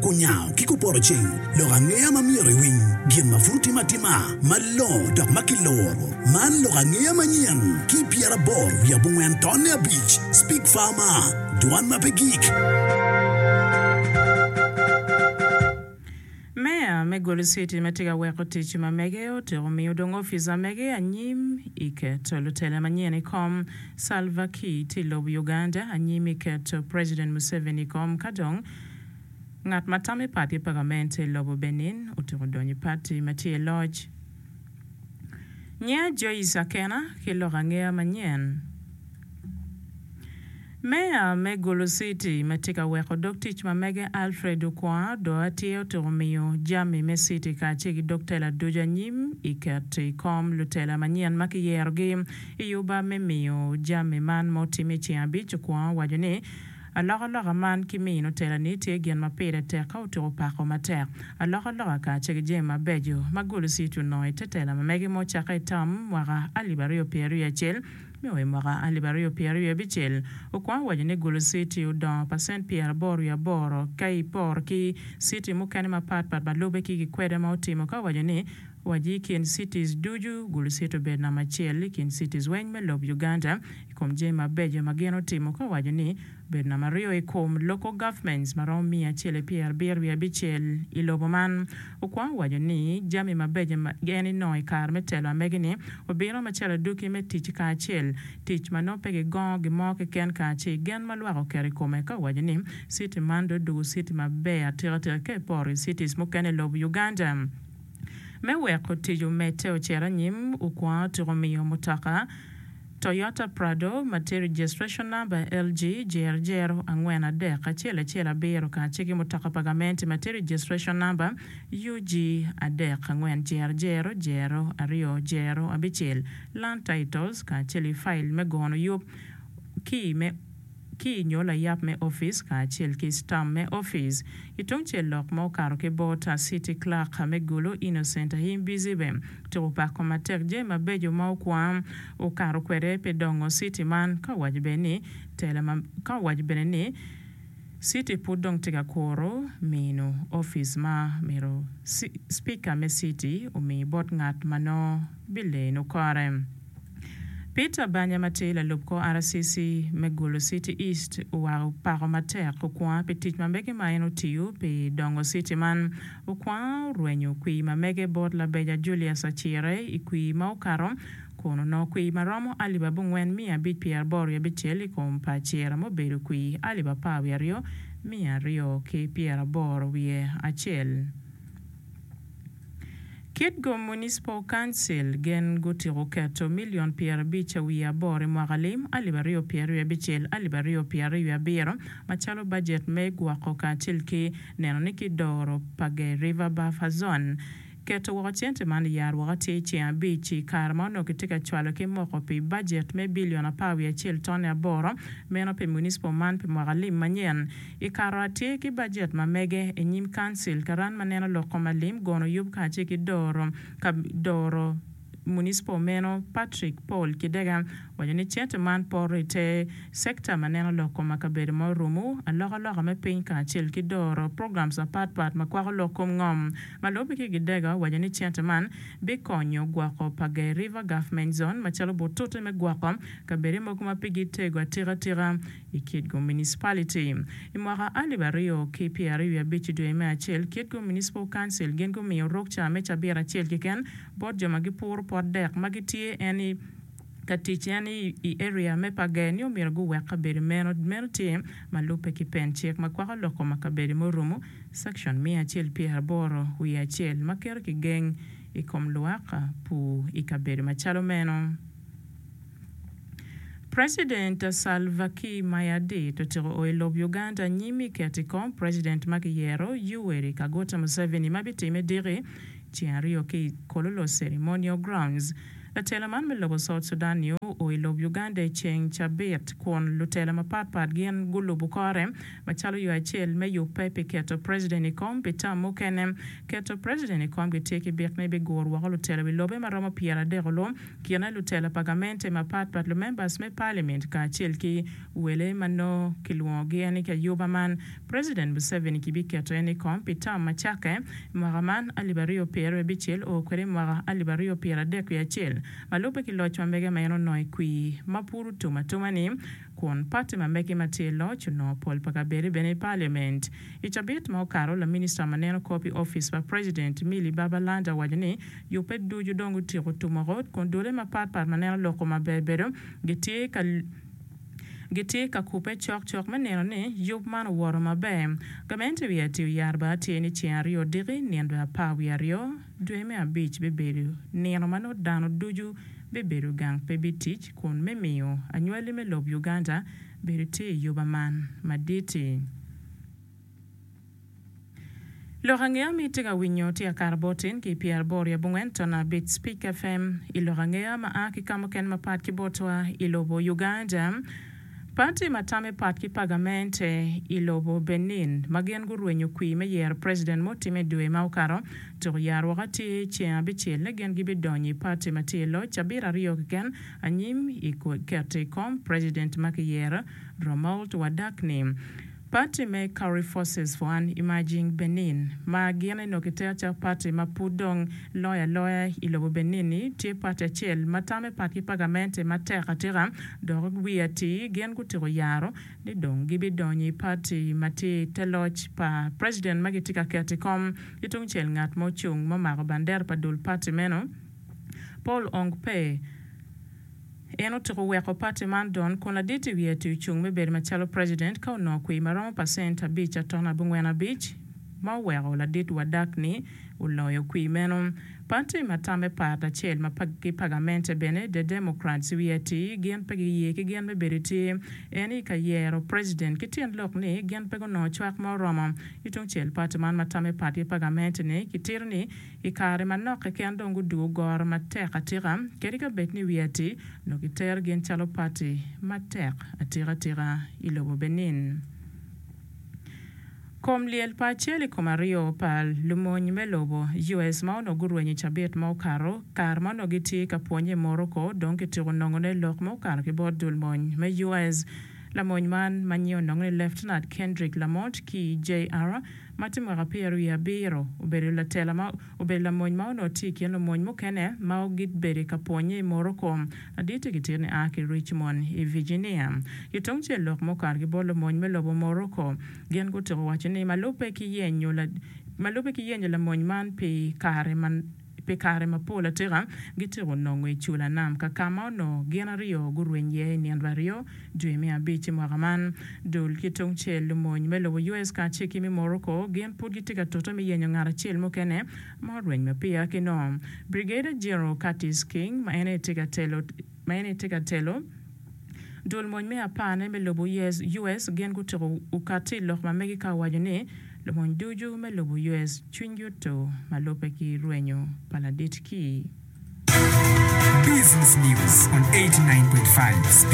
Kunyango ki kupotoceng lok angeya ma myero iwiny gin ma pud otime atima malongo dok ma kiluro. Man lok angeya manyen ki pyeraboro wiye abongwen tonne abic, Speak Farmer, Dwan ma pe gik. Meya me Goli City ma tye ka weko tic ma mege otyeko miyo dong opica mege anyim i keto lutela manyen i kom, Salva Kiir tye i lobo Uganda anyim i keto President Museveni i kom ka dong Ngat ma tam i pati pagament i lobo Benin otuko donyo i pati ma tye i loc. Nyinga Joyce Akena ki lok angeya manyen. Meya me Gulu City ma tye ka weko dog tic ma mege Alfred Okwonga do atye otuko miyo jami me city kacel ki dog tela ducu anyim i keto i kom lutela manyen ma kiyerogi i oba me miyo jami man ma otimme i ceng abic Okwonga owaco ni Alokaloka man ki mino telani tye gin ma pire tek ka otuko pako matek. Alokaloka kacel ki jami mabeco ma Golosiet onongo i te tela ma mege ma ocakke i tam mwaka alip aryo pyero aryo acel me o i mwaka alip aryo pyero aryo abicel okwongo waco ni Golosiet odongo pacent pyero aboro wiye aboro ka i poro ki citi mukene mapat pat ma lube ki gikweda ma otimo ka owaco ni waci i kin cities ducu Golosiet obedo namba acel i kin cities weng me lob Uganda i kom jami mabeco ma gin otimo ka owaco ni, Obedo namba aryo i kom Local Governments ma romo miya acel pi abiro wiye abicel i lobo man. Okwongo owaco ni jami mabeco ma en enongo i kare me telo amegini obino macalo aduki me tic kacel tic ma nongo pe gigongo gin mo keken kaci gen ma lwak oketo i kome ka owaco ni city man dong oduku city maber atika tika ka iporo i cities mukene i lob Uganda. Me weko tic omedde ocit anyim, okwongo tuk omiyo mutoka. Toyota Prado, Mate Registration Number, LG, Jer Jero, angwen adek acel acel abiro, kace ki mutoka pa gamente Mate Registration Number, UG, adek angwen Jer Jero, Jero, aryo Jero, abicel, Land Titles, kacel i file me gono yub ki me. ki i nyo layap me opic kacel ki stamp me opic. I tungcel lok ma okato ki bot City Clerk me Gulu Innocent Ahim Bizibe tuku pako matek jami mabeco ma okwa okato kwede pi dongo city man ka owaco bene ni tela ma ka owaco bene ni city pud dong tye ka kuru mino opic ma myero Speaker me city omi bot ngat ma nongo bileno kore. Peter Banya ma tye lalub kor RCC me Gulu City East oweko pako matek Okwonga pi tic ma mege ma en otiyo pi dongo city man. Okwonga orwenyo kwir ma mege bot labeja Julius Acire i kwir ma okato kun onongo kwir ma romo alip abongwen miya abic pyeraboro wiye abicel i kom pa Acire mubedo kwir alip apar wiye aryo miya aryo ki pyeraboro wiye acel. Kitgum Municipal Council gen gutiko keto milion pyerabic a wiye aboro i mwaka lim alip aryo pyer aryo abicel, alip aryo pyer aryo wiye abiro macalo bajet me gwoko kacel ki neno ni ki doro pa Gay River Buffer Zone. Keto woko cente man i yaro woko atir ceng abic i kare ma onongo kitye ka cwalo ki moko pi bajet me bilion apar wiye acel tone aboro meno pi municipal man pi mwaka lim manyen. I kato atir ki bajet ma mege i nyim Council, Karan ma neno lok kom alim, gono yub kacel ki doro ka doro municipal meno Patrick Paul Kidega waco ni cente man poto i te sector ma neno lok kom akabedo ma orumu, alokaloka me piny kacel ki doro programs mapat pat ma kwako lok kom ngom. Ma lubbe ki Kidega owaco ni cente man bi konyo gwoko Pagai River Government Zone macalo butute me gwoko kabede mogo ma pigi tego atika tika, I Kitgum Municipality, I mwaka alip aryo ki pyeraryo wiye abic i dwe me acel, Kitgum Municipal Council gin gumiyo rok ca me cabit acel keken bot jo ma gipuro pot dek ma gitye en i ka tic en i i area me Pager ni omyero guwek kabedo meno meno tye ma lubbe ki pen cik ma kwako lok koma kabedo me orumu Section miya acel pyeraboro wiye acel ma keto kigeng i kom lwak pur i kabedo macalo meno. President Salva Kiir Mayadit otyeko o i lob Uganda anyim i keto i kom President ma kiyero Yoweri Kaguta Museveni ma bitimme diki ceng aryo ki i Kololo Ceremonial Grounds. Latela man me lobo South Sudan ni o o i lob Uganda i ceng cabit kun lutela mapat pat gin gulubu kore macalo yo acel me yubbe pi keto President i kom pi tam mukene. Keto President i kom gitye ki bik ni bigur woko lutela wi lobe maromo pyer adek olu kine lutela pa gamente mapat pat, lumembers me palimint kacel ki wele ma nongo kilwongo gi en ki ayuba man. President Museveni ki bi keto en ikom pi term ma cakke mwaka man alip aryo pyer we bicel oo kwede imwaka alip aryo pyer adek wiye acel ma lube ki loc ma mege ma en onongo ikwii ma pud otum atuma ni kun party ma mege ma tye iloc onongo pol pa kabede bene i palimint. I cabit ma okato, laminista ma neno kor pi office pa president Milly Babalanda owaco ni Yubbe ducu dong gutyeko tumo rot, kun dule mapat pat ma neno lok-ku maber bedo gitye ka gitye ka kubbe cok cok me neno ni yub man owoto maber. Gamente wiye atir yar bene tye ni ceng aryo odiki, nino bene apar wiye aryo, dwe me abic bibedo nino ma nongo dano ducu bibedo gang pe bitic, kun me miyo anywali me lob Uganda bedo tye i yuba man madit-ti. Lok angeya ma itye ka winyo tye Akara bot in ki pyera boro i abongwen ton abic Speak FM i lok angeya ma a ki ka mukene mapat ki botwa i lobo Uganda, pati ma tamme pat ki pagamente i lobo Benin ma gin gurwenyo kwir me yero president ma otimme dwe ma okato tuku yaro woko atir ceng abicel ni gin gibidonyo i pati ma tye i loc cabit aryo keken anyim i keto i kom president ma kiyero Romuald Wadak ni Parti me Kauri Forces for an Emerging Benin, ma gin eno kiter calo parti ma pud dong loyo aloya i lobo Benin-ni, tye parti acel ma tamme pat ki pagamente matek atika dok wiye atir gin gutyeko yaro ni dong gibidonyo i parti ma tye i te loc pa president ma gitye ka keto i kom. Ki tungcel ngat ma ocung ma omako bandera pa dul parti meno, Paul Ong Pei, En otuko weko pati man don kun ladit i wiye ti ocung me bedo macalo president ka onongo kwir ma romo pacent abic atono abongwen abic ma oweko ladit wadak-ni oloyo kwir meno. Pati ma tamme pat acel ma ki pagamente bene, The Democrats, wiye ti gin pe giye ki gin me bedo i tye en i ka yero president ki tyen lok ni gin pe gunongo cwak ma oromo. I tungcel pati man ma tamme pat ki pagamente-ni ki tito ni I kare manok keken dong gudugo goro matek atika kadi ka bed ni wiye atir, nyo gitero gin calo pati matek atika tika i lobo Benin. Kom lyel pa acel i kom aryo pa lumony me lobo US ma onongo gurwenyo i cabit ma okato, kare ma onongo gitye ka pwonye i Morocco dong kityeko nongo ne lok ma okato ki bot dul mony me US. Lamony man ma nyinge onongo ni Leftenant Kendrick Lamont ki JR. ma tye mwaka pyero wiye abiro, obedo latela ma obedo lamony ma onongo tye i kin lumony mukene ma gibedo ka pwonnye i Morocco, ladit i kitin ni a ki Richmond i Virginia. Ki tungcel lok ma okato ki bot lumony me lobo Morocco, gin gutuko waco ni ma lubbe ki yenyo ma lubbe ki yenyo lamony man pi kare ma Pi kare mapol atika, gityeko nongo i cula nam ka ka ma onongo gin aryo gurweny iye i nino pa aryo, dwe me abic i mwaka man. Dul ki tungcel, lumony me lobo US kacel ki me Morocco gin pud gitye ka tute me yenyo ngat acel mukene ma orweny ma peya ki nongo. Brigadier General Curtis King ma en aye tye ka telo Ma eni tye ka telo, Dul mony me apar-ne me lobo US gin gutyeko okatti i lok ma megi ka owaco ni, Lumony ducu me lobo US cwinygi oto ma lubbe ki rwenyo pa ladit-ki. Business News on 89.5.